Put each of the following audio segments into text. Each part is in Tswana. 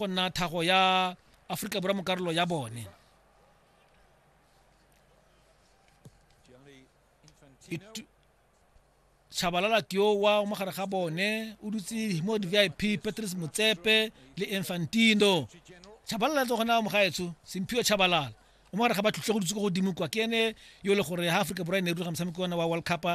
go nna thago ya aforika borwa mo karolo ya bone Chabalala Tiowa mo gare ga bone o dutse mo di-vip patrice motsepe le infantino chabalala tse gona mo gaetsho semphio chabalala o mo gare ga ba tlhutlhe go dutse ko godimo kwa ke ene yo e le gore ha aforika borwa e ne e rulaga motshameko ona wa world cup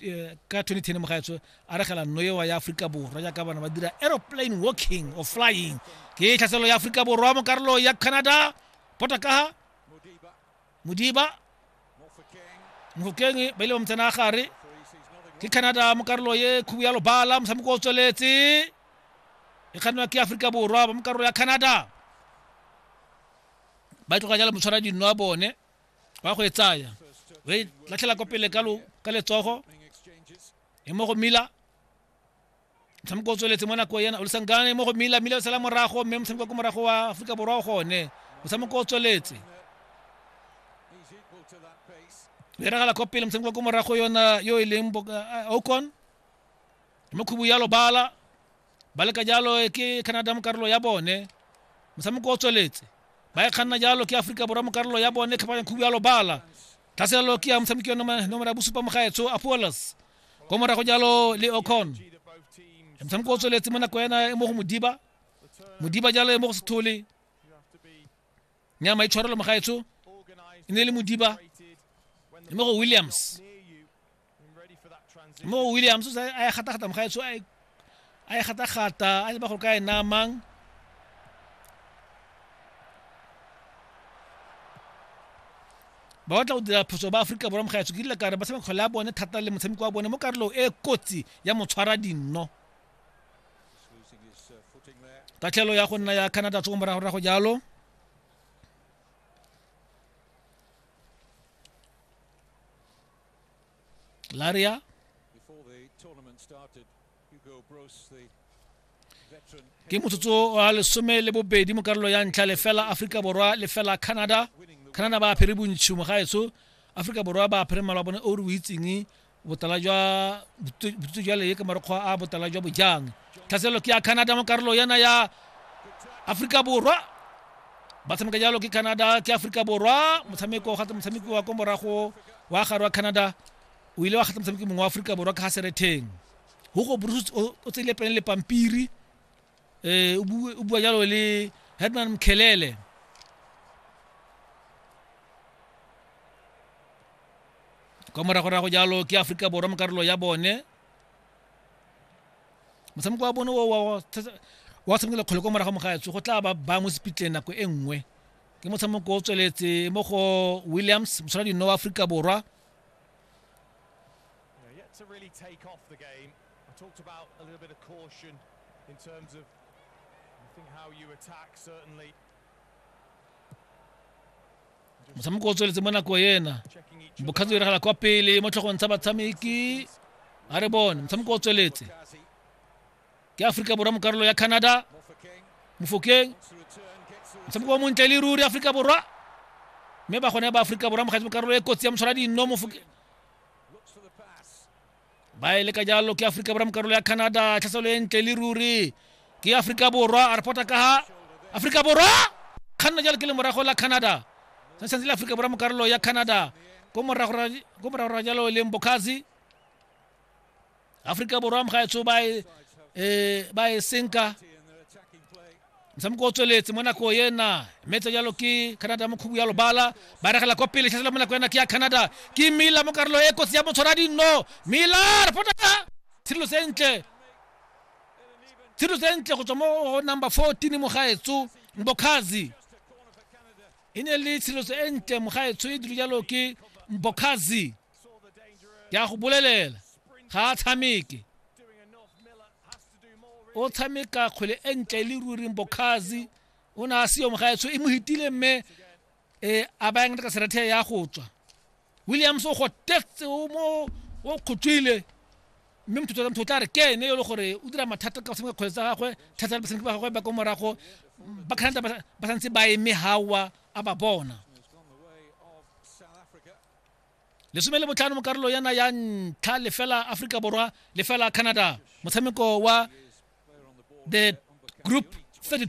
eh, ka 2010 mogaetswe a regela noewa ya aforika borwa jaaka bana ba dira aeroplane walking or flying ke tlhaselo ya aforika borwa mo karolo ya canada potakaga modiba mofokeng ba ile ba motsena gare ke canada mo karolo ye khubu ya lobala motshameko o tsweletse e kgannwa ke aforika borwa ba mo karolo ya canada ba e tloga jalo motshwara dinno a bone wa go e tsaya o e latlhela ko pele ka letsogo e mo go mila motshameko o tsweletse mo nako ena olisangane mo go mila mila o sala morago mme motshameko ko morago wa aforika borwa o gone motshameko o tsweletse beragala ko pele motshameko ko morago yona yo e leng okon mo khubu ya lobala ba leka jalo e ke canada mo karolo ya bone motshameko o tsweletse ba e kganna jalo ke aforika borwa mo karolo ya bone tlhapanya khubu ya lobala tlhaselelo ke ya motshameki wa noma- nomoro ya bosupa mogaetsho apolos ko morago jalo le ocon motshameko o tsweletse mo nako ena e mo go modiba modiba jalo e mo go sethole nyama e tshwarelo mogaetsho e ne e le modiba mme go williams mme go williams o a e gata-gata mogaetsho a e gata-gata a leba gore ka e namang ba batla go dira phoso ba aforika borwa mogaetsho ke dila kare ba tshameka kgole ya bone thata le motshameko wa bone mo karolong e kotsi ya motshwara dinno tatlhelo ya go nna ya canada tsoko morago ra go jalo laria ke motsotso wa lesome le bobedi mo karolo ya ntlha lefela aforika borwa lefela canada canada ba apere bontšhi mo gaetso aforika borwa ba apere mala bone o re o itseng botala jwa botu- botutu jwa leye ke marokgwa a botala jwa bojang tlhaselelo ke ya canada mo karolo yana ya aforika borwa ba tshameka jalo ke canada ke aforika borwa motshameko o gata motshameki wa ko morago wa gare wa canada o ile wa gata motshameki mongwe wa aforika borwa ka ga seretheng hugo bruce o o tseile pele le pampiri eh, o bue- o bua jalo le headman mkhelele kwa moragorago jalo ke aforika borwa mo karolo ya bone motshameko wa bone o wa- wa- thata- wa tshamekela kgole kwa morago mogaetsho go tla ba ba mo sepitleng nako e nngwe ke motshameko o tsweletse mo go williams motshola dino wa aforika borwa I talked about a little bit of caution in terms of, I think, how you attack, certainly. motshameko o tsweletse mo nako ena Checking each bokgatsi o diragala kwa pele mo tlhogong tsa batshameki a re bone motshameko o tsweletse Kazi, ke aforika borwa mo karolo ya canada Mofokeng, mofokeng to return, gets the motshameko o montle le ruri aforika borwa mme ba gone ba aforika borwa mogatsi mo karolo e kotsi ya motshwara dinno Mofoke- ba e le ka jalo ke aforika borwa mo karolo ya canada tlhaselo e ntle le ruri ke aforika borwa a repota ka ha aforika borwa kganna jalo ke le morago la canada se santse le aforika borwa mo karolo ya canada ko morago ra- ko morago ra jalo e leng bokhazi aforika borwa mo gaetsho ba e eh, ba e senka motshameko o tsweletse mo nako ena mme tse jalo ke canada mo khubu ya lobala ba regela kwa pele tlhasela mo nako ena ke ya canada ke mila mo karolo e kotsi ya motshwara dinno mila re potaka tshirelo sentle tshirelo sentle go tswa mo go number 14 mogaetso mbokhazi e ne le tshireletso e ntle mogaetsho e dilo jalo ke mbokhazi ke a go bolelela ga a tshameke o tshameka kgwele e ntle e le ruring bokhazi o ne a seyo mogaetsho e mo hitile mme e a bayang ka serethe ya go tswa williams o gotetse o mo o kgotswile mme motho motho o tla re ke ene yo le gore o dira mathata ka go tshameka kgwele tsa gagwe thata le batshameki ba gagwe ba ko morago ba canada ba ba santse ba eme gawa a ba bona lesome le botlhano mo karolo yana ya ntlha lefela aforika borwa lefela canada motshameko wa the group 32